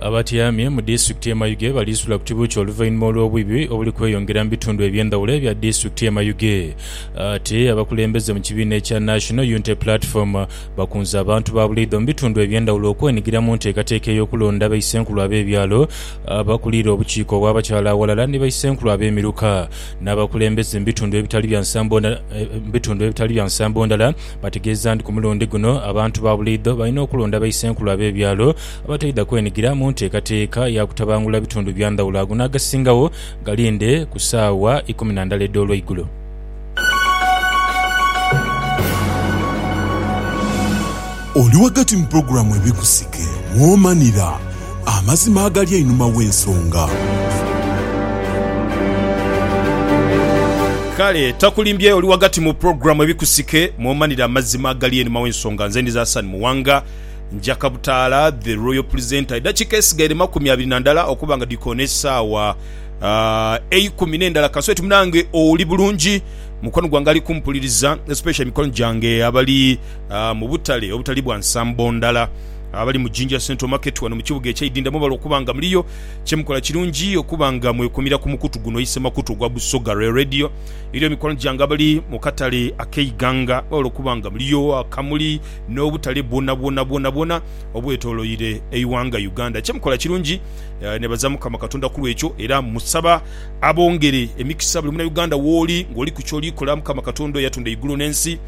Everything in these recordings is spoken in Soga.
Abatyaamye mu disitulikiti ye Mayuge baliisula ku kibuukye oluvainhuma olw'obwibi obuli kweyongera mu bitundu eby'endhawulo ebya disitulikiti ye Mayuge. Ate abakulembeze mu kibiina ekya National Unity Platform bakunze abantu ba buleidho mu bitundu eby'endhawulo okwenhigira mu nteekateeka ey'okulonda baisenkulu ab'ebyalo, abakulira obukiiko obw'abakyala aghalala ni baisenkulu ab'emiruka n'abakulembeze mu bitundu ebitali bya nsambo ndhala bategeeza nti ku mulundi guno abantu ba buleidho balina okulonda baisenkulu ab'ebyalo abataidha kwenigira mu nteekateeka ya kutabangula bitundu bya ndhawulo ago n'agasingagho galinde ku saawa ikumi na ndala edh'olweigulo. Oli ghagati mu pulogulaamu Ebikusike mw'omanira amazima agali einhuma w'ensonga. Kale takulimbye oli ghagati mu pulogulaamu Ebikusike mw'omanira amazima agali einhuma w'ensonga. Nze ndi Zasan Muwanga. Njaka Butaala, The Royal Presenter, Edakiika esigaire makumi abiri na ndala okuba nga dhikoona esaawa eikumi n'endala kasweti munange oli bulungi? Mukwano gwange ali kumpuliriza especially mikwano gyange abali mu butale obutali bwa nsambo ndala abali mu Jinja Central Market wano mu kibuga ekye Idinda mwebale okuba nga muliyo. Kyemukola kirungi okuba nga mwekumira ku mukutu guno ise makutu ogwa Busoga Rail Radio. Eriyo mikwano gyange abali mu katale ak'e Iganga mwebale okuba nga muliyo, Akamuli, n'obutale bwonabwona bwonabwona obwetoloire eighanga Uganda. Kyemukola kirungi nebaza Mukama Katonda kulwekyo era musaba abongere emikisa buli munauganda wooli nga oliku kyoli kola Mukama Katonda eyatunda eigulu n'ensi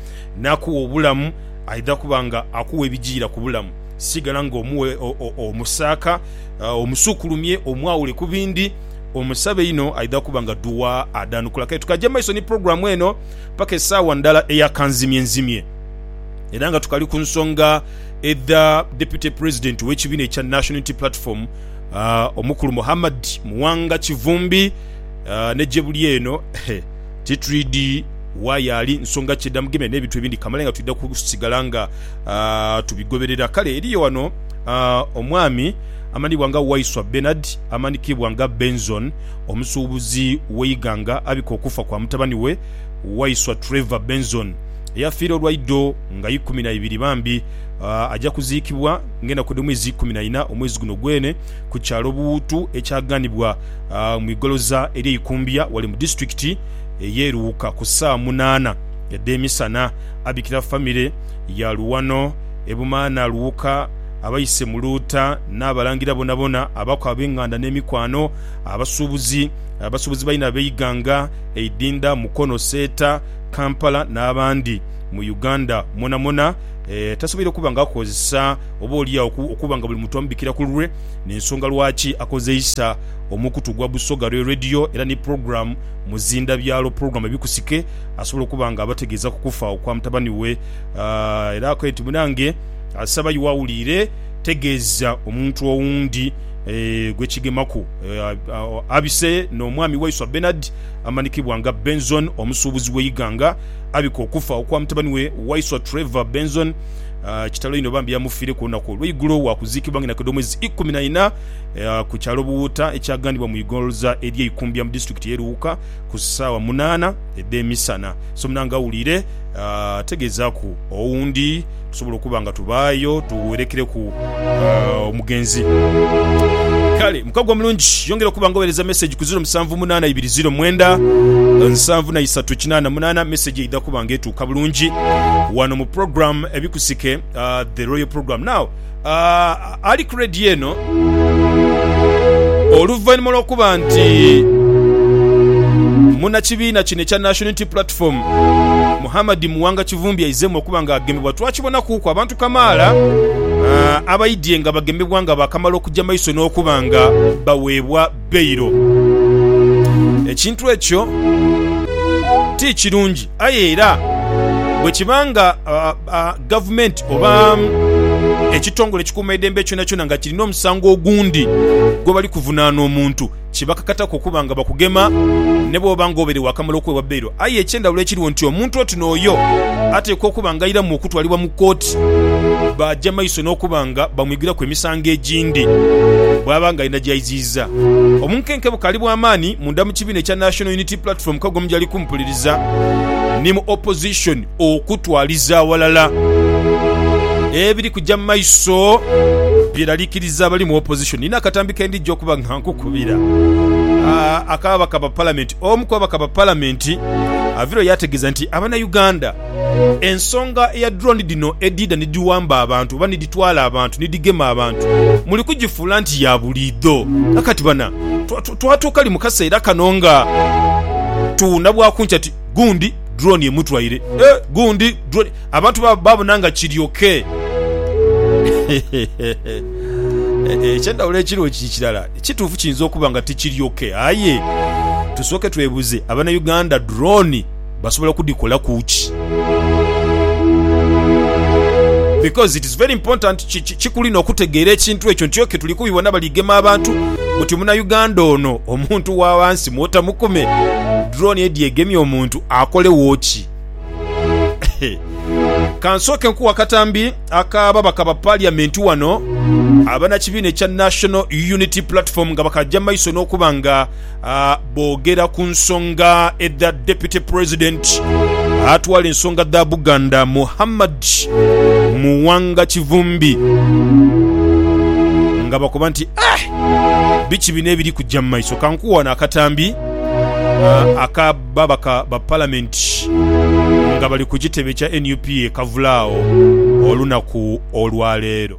nakugha obulamu aidha kuba nga akugha ebijiira kubulamu sigala nga omuwe omusaaka omusukulumye omwawule kubindi omusabe inho aidha kuba nga duwa adhanukula kale tukaje mumaiso ni program eno paka esaawa ndala eya kanzimyenzimye. era nga tukali ku nsonga edha Deputy President w'ekibiina ekya National Unity Platform uh, omukulu Muhammad Muwanga Kivumbi uh, ne gyebuli eno titwidi wayaali nsonga ki edhamugemye n'ebintu ebindi kamala nga twidha kusigala nga uh, tubigoberera kale eriyo wano uh, omwami amanibwa nga Waiswa Bernard amanikibwa nga Benzon omusuubuzi w'eiganga abika okufa kwa mutabani we Waiswa Trevor Benzon eyafiira olwa idho nga ikumi na ibiri bambi, aja kuziikibwa ng'enaku edh'omwezi ikumi na ina omwezi guno gwene ku kyalo Buwutu ekyaganibwa mu igoloza ery'e Ikumbya wale mu disitulikiti ey'e Luuka ku saa munaana edh'emisana. Abikira famire ya Luwano, Ebumaana, Luuka, abaise mu Luuta n'Abalangira bonabona, abaku ab'enganda n'emikwano, abasuubuzi, abasuubuzi baine ab'eighanga eidhindha, Mukono, Seeta, Kampala n'abandi mu Uganda mwonamwona tasoboire kuba nga akozesa oba olyagho okuba nga buli muntu amubikira ku lulwe n'ensonga lwaki akozeisa omukutu gwa Busoga Royal Radio era ni pulogulaamu Muzinda Byalo pulogulaamu ebikusike asobola okuba nga abategeeza ku kufa okwa mutabani we era akoe nti munange asaba iwe awuliire tegeeza omuntu owundi gwekigemaku abise n'omwami waiswa Benard. amanikibwa nga Benzon omusuubuzi w'e Iganga abika okufa okwa mutabani we Waiswa Trevor Benzon. Kitalo inho bambi yamufiireku olunaku olweigulo wakuziikibwa nga inakedha omwezi ikumi na ina ku kyalo Buwuuta ekyagandibwa mu igholza erye Ikumbya mu disitulikiti ye Luwuka ku saawa munaana edhemisana. Somunanga awuliire ategeezaku owundi. tusobola okuba nga tubaayo tuwerekereku omugenzi. Kale mukago omulungi yongera okuba nga owereza message ku 0728297938 message eidha kuba nga etuuka bulungi wano mu program ebikusike uh, the royal program now ali ku rediyo eno oluvanhuma lw'okuba nti munnakibiina kino ekya National Unity Platform Muhammad Muwanga Kivumbi aizeemu okuba nga agemebwa. Twakibonakuuku abantu kamaala abaidye nga bagemebwa nga baakamala okuja maiso n'okuba nga baweebwa bbairo. Ekintu ekyo ti kirungi. Aye era bwe kiba nga gavumenti oba ekitongole ekikuumaidembe kyonakyona nga kirina omusango ogundi gwe bali kuvunaana omuntu, kibakakataku okuba nga bakugema ni bwoba nga obaire waakamala okuweebwa bbeiro. Aye eky'endhawulo ekiriwo nti omuntu oti n'oyo ateekwa okuba ng'airamu okutwalibwa mu kooti baaja maiso n'okuba nga bamwigiraku emisango egindi bw'aba ng'alina gy'aiziiza. Omunkenke bukaali bwa maani munda mu kibiina ekya National Unity Platform Kagomo gy'ali kumpuliriza ni mu Opposition okutwaliza aghalala ebiri kuja mu maiso byeralikiriza abali mu Opposition. Nina akatambi ke ndija okuba nga nkukubira ak'ababaka ba Palamenti. Omu ku ababaka ba Palamenti avireyo yaategeeza nti Abanauganda ensonga eya drone dhino edhiidha ni dhiwamba abantu oba ni dhitwala abantu ni dhigema abantu muli kugifuula nti ya buliidho nga kati bana twatuukali mu kaseera kano nga tuwuuna bwa kunkya ti gundi drone emutwaire eh gundi drone abantu babona nga kiryoke. Eky'endhawulo ekiriwo kiri kirala. Ekituufu kiyinza okuba nga tikiri ok. Aye tusooke twebuze abana Uganda drone basobola okudikolaku ki? Because it is very important kikuli nokutegeera ekintu ekyo nti ok tuli kubibona bali gema abantu buti muna Uganda ono omuntu wawansi mwota mukume drone edye egemye omuntu akolewo ki? Kansooke nkuwe akatambi. Akababaka ba Parliament wano abanakibiina ekya National Unity Platform nga bakaja maiso nokuba nga bogera ku nsonga edha Deputy President atwala ensonga dha Buganda Muhammad Muwanga Kivumbi nga bakoba nti Biki bino ebiri kuja mumaiso kankuwe wano akatambi aka babaka ba palamenti nga bali ku kitebe kya nup e Kavula agho olunaku olwaleero.